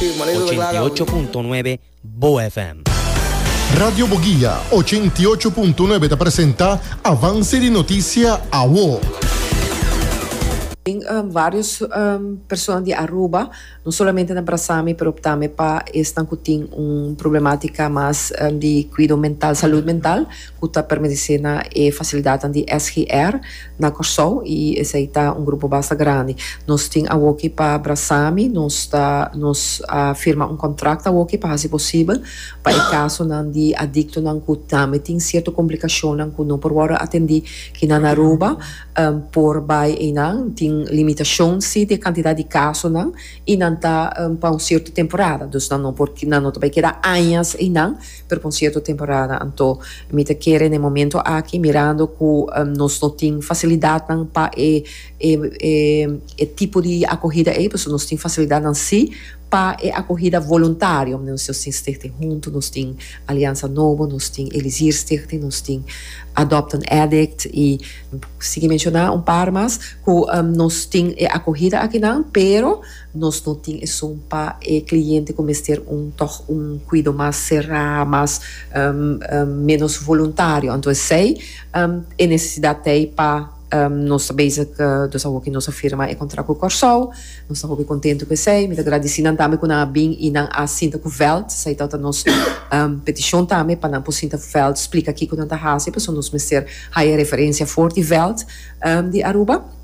Ochenta i ocho punto nuebe Bo FM. Radio Boguia ochenta i ocho punto nuebe ta presenta Avance di Noticia Awo. Tin varios persona di Aruba, no solamente na Brasami, pero tambe pa esnan cu tin un problematica mas di cuido mental, salud mental. cu ta permenece na e facilidadnan di SGR na Corsou y esey ta un grupo basta grandi. Nos tin awoki pa brasa mi, nos ta nos a firma un contract awoki pa haci posibel pa e casonan di adictonan cu tambe tin cierto complicacionnan cu no por wordo atendi ki na Naruba por bay eynan. Tin limitacion si di e cantidad di casonan y nan ta pa un cierto temporada, dus nan no por nan no ta bay keda añas eynan. Pero pa un cierto temporada anto mi ta kere n'e momento aki mirando cu nos no tin facilidadnan pa e e tipo di acogida ey pasobra nos tin facilidadnan si pa e acogida voluntario nos tin Stichting Hunto nos tin Alianza Nobo nos tin Elisir Stichting nos tin Adopt an Addict y sigui menciona un par mas cu nos tin e acogida akinan pero Nos no tin esun pa e cliente cu mester un tog un cuido mas cerá, mas menos voluntario. Anto esey e necesidad t'ey pa nos ta bezig dos a hopi nos a firma e contract cu Corsou. Nos ta hopi contento cu esey. Mi ta gradici nan tambe cu nan a bin y nan a sinta cu veld. Esey ta nos peticion tambe pa nan por sinta cu veld splica kico nan ta haci pasobra nos mester haya referencia for di veld di Aruba.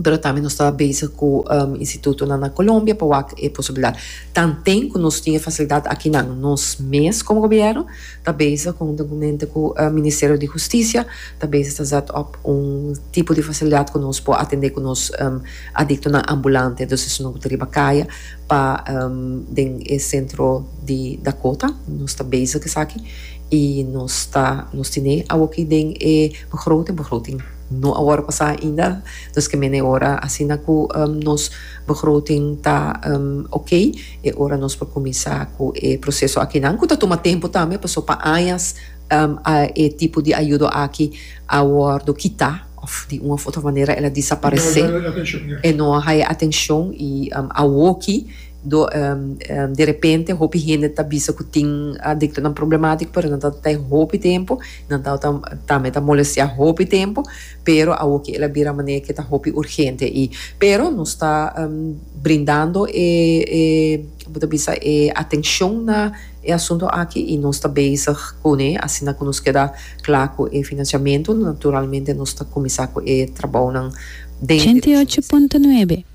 pero tambe nos ta bezig cu institutonan na Colombia pa wak e posibilidad. Tanten cu nos tin e facilidad akinan, nos mes como gobierno ta bezig huntunmente cu Ministerio di Husticia ta bezig ta zet op un tipo di facilidad cu nos por atende cu nos adictonan ambulante, dus esun cu ta riba caya pa den e centro di Dakota. Nos ta bezig esaki y nos ta nos tine awoki den e begroting, begroting. No a wòrdu pasá ainda, nos ke mene e ora asina ku nos begroting ta okey, e ora nos por kuminsá ku e proseso akinan ku ta tuma tempu tambe, pasobra pa añas e tipo di ayudo aki a wòrdu kitá òf di un òf otro manera el a disaparesé, e no a haya atenshon i awoki derepente hopi hende ta bisa ku tin diklonan problemátiko pero nan ta ta e hopi tempu. Nan tau ta tambe ta molestia hopi tempo pero awoki el a bira manera ke ta hopi urgente i pero nos ta brindando e e bo ta bisa e atencion na e asunto aki i nos ta bezig kune asina ku nos keda kla ku e financiamento naturalmente nos ta kuminsá ku e trabounan den direccion di. Ochenta y ocho punto nuebe.